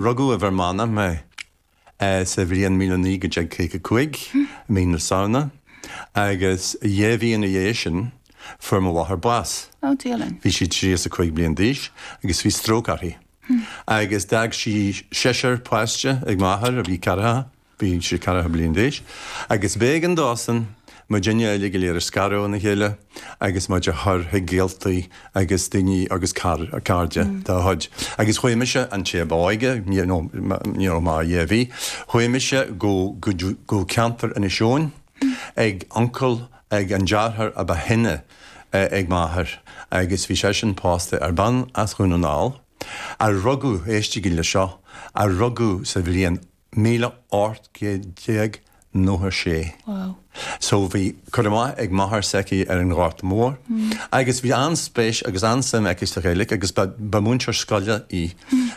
Rugadh i bhFear Manach mé sa bhliain míle naoi gcéad déag caoga cúig, i mí na Samhna, agus dhá mhí ina dhiaidh sin fuair mo mháthair bás. Bhí sí tríocha cúig bliain d'aois agus bhí stróc uirthi. Agus d'fhág sí seisear páiste ag m'athair a bhí ceathracha. Bhí sé ceathracha bliain d'aois agus b'éigean dósan muidinne uile go léir a scaradh óna chéile agus muid a chur chuig gaoltaí agus daoine agus cairde dá chuid. Agus chuaigh mise, an té ab óige, ní raibh mé ach dhá mhí, chuaigh mise go ceantar Inis Eoghain ag uncail, ag an deartháir a ba shine ag m'athair agus bhí seisean pósta ar bean as Dhún na nGall a rugadh, éistigí le seo, a rugadh sa bhliain Míle ocht gcéad déag nócha sé. Wow. So bhí cur amach ag máthair s'aici ar an Ghorta Mór agus bhí an-spéis agus an-suim aici sa Ghaeilge agus ba ba múinteoir scoile í.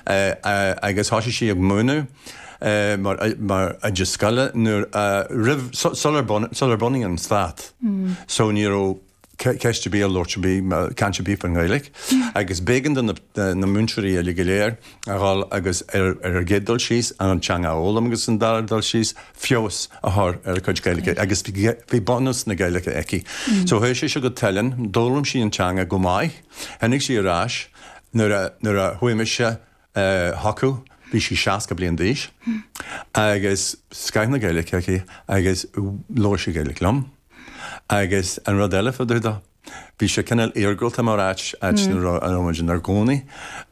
Agus thoisigh sí ag múineadh mar mar oide scoile nuair a roimh su sular bun sular bunaíodh an stát. So ní raibh ceist ar bith, ar labhairt ar bith, caint ar bith faoin nGaeilge agus b'éigean do na múinteoirí uile go léir a dhul agus, ar an gcéad dul síos, an teanga a fhoghlaim agus, ar an dara dul síos, feabhas a chur ar a cuid Gaeilge agus bhí bunús na Gaeilge aici. So chuaigh sise go Teileann, d'fhoghlaim sí an teanga go maith, tháinig sí ar ais nuair a chuaigh mise, chucu, bhí sí 60 bliain d'aois agus scoth na Gaeilic aici agus labhair sí Gaeilic liom agus an rud eile fá dtaobh do, bhí sé cineál iargúlta mar áit, áit a raibh muid inár gcónaí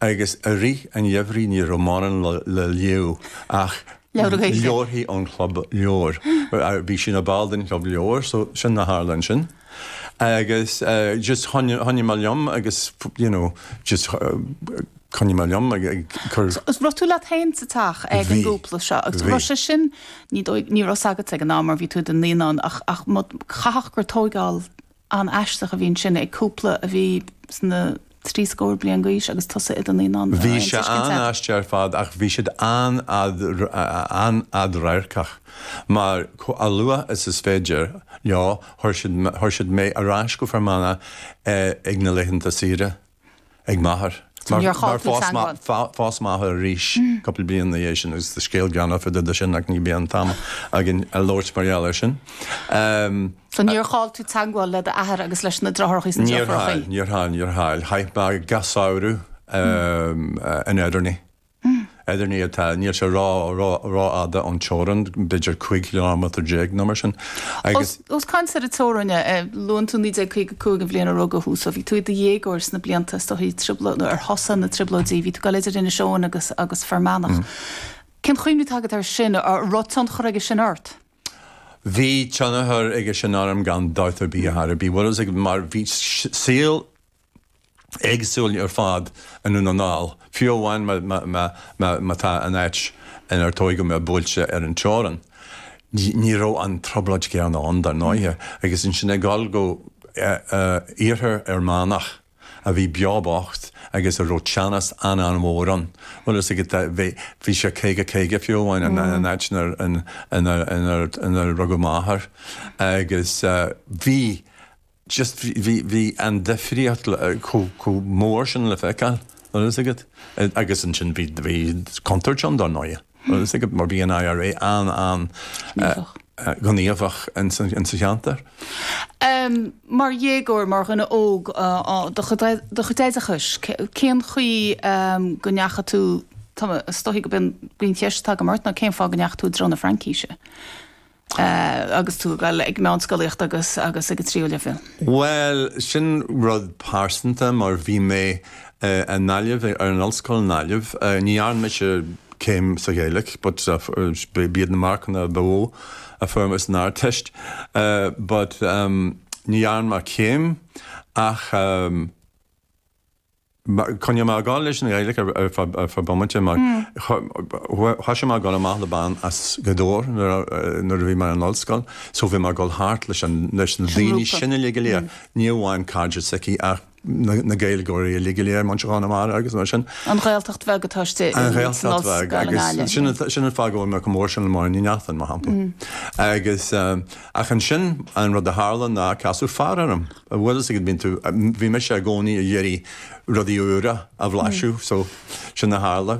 agus i rith an gheimhridh ní raibh mórán le léamh ach leabharthaí ón chlub leabhar, bhí sí ina ball den chlub leabhar so sin a tharla ansin. Agus just choinnigh mé liom agus you know just choinnigh mé liom ag cur. So bhí tú leat féin sa teach ag an gcúpla seo agus bhí sé sin ar ndóigh ní raibh a fhios agatsa ag an am mar bhí tú i do naíonán ach caithfidh gur tógáil an-aisteach a bhí ansin ag cúpla a bhí sna trí scór bliain d'aois agus tusa i do naíonán. Bhí sé an-aisteach ar fad ach bhí siad an-fhadradharcach mar chomh luath is is féidir leo chuir siad mé ar ais go Fear Manach ag na laethanta saoire ag m'athair mar phós m'athair arís cúpla bliain ina dhiaidh sin agus tá scéal greannmhar fá dtaobh de sin ach ní bheidh an t-am againn a labhairt mar gheall air sin. So níor chaill tú teagmháil le d'athair agus leis na deartháireachaí is na deirfiúrachaí? Níor chaill, níor chaill, níor chaill. Chaith mé gach samhradh in Ederney. Ederney atá, níl sé rófhada ón teorainn, b'fhéidir cúig ciliméadar déag nó mar sin. Os caint ar an teorainn, luann tú 1955, an bhliain a rugadh thú, so bhí tú i do dhéagóir sna blianta is dóigh ar thosaigh na Trioblóidí, bhí tú ag dul idir Inis Eoghain agus Fear Manach. Cén chuimhne atá agat air sin, an raibh tionchar aige sin ort? Bhí tionchar aige sin orm gan dabht ar bith ar chor ar bith. Bhfuil a fhios agat, mar bhí saol éagsúil ar fad i nDún na nGall, fiú amháin má tá an áit inar tógadh mé buailte ar an teorainn. Ní raibh an trioblóid chéanna ann, dar ndóighe, agus ansin ag dul go iarthar Fhear Manach, a bhí beo beathach agus a raibh teannas an-an-mhór ann. Bhfuil a fhios agat, bhí sé caoga caoga fiú amháin san áit inar rugadh m'athair agus bhí just, bhí an difríocht chomh mór sin le feiceáil, bhfuil a fhios agat, agus ansin bhí contúirt ann dár ndóighe. Agus mar bhí an IRA an-ghníomhach in sa cheantar. Mar dhéagóir, mar dhuine óg do chuid oideachais, cén chaoi go ndeachaigh tú, tá mé, is dóigh go b'in an cheist atá agam ort ná cén fáth go ndeachaigh tú i dtreo na Fraincíse? agus tú ag dul ar meánscolaíocht agus agus ag an tríú leibhéal? Bhuel, sin rud pearsanta mar bhí mé i nGaillimh, ar an ollscoil i nGaillimh. Ní dhearna mise céim sa Ghaeilge but b'iad na marcanna ba mhó a fuair mé san Ardteist but ní dhearna mé céim ach, Choinnigh mé ag gabháil leis an Ghaeilge ar feadh bomaite mar thosaigh mé ag dul amach le bean as Gaoth Dobhair nuair a bhí mé ar an ollscoil so bhí mé ag dul thart leis na daoine sin uilig go léir, ní amháin cairde s'aici ach na Gaeilgeoirí uilig go léir, muintir Chonamara agus mar sin. An Ghaeltacht bheag atá istigh in Ollscoil na Gaillimhe. Sin an fáth go bhfuil mé chomh mór sin le Máirín Ní Neachtain mar shampla agus. Ach ansin, an rud a tharla ná casadh fear orm. An bhfuil a fhios agat, bíonn tú, bhí mise i gcónaí ag iarraidh rudaí úra a bhlaiseadh, so sin a tharla.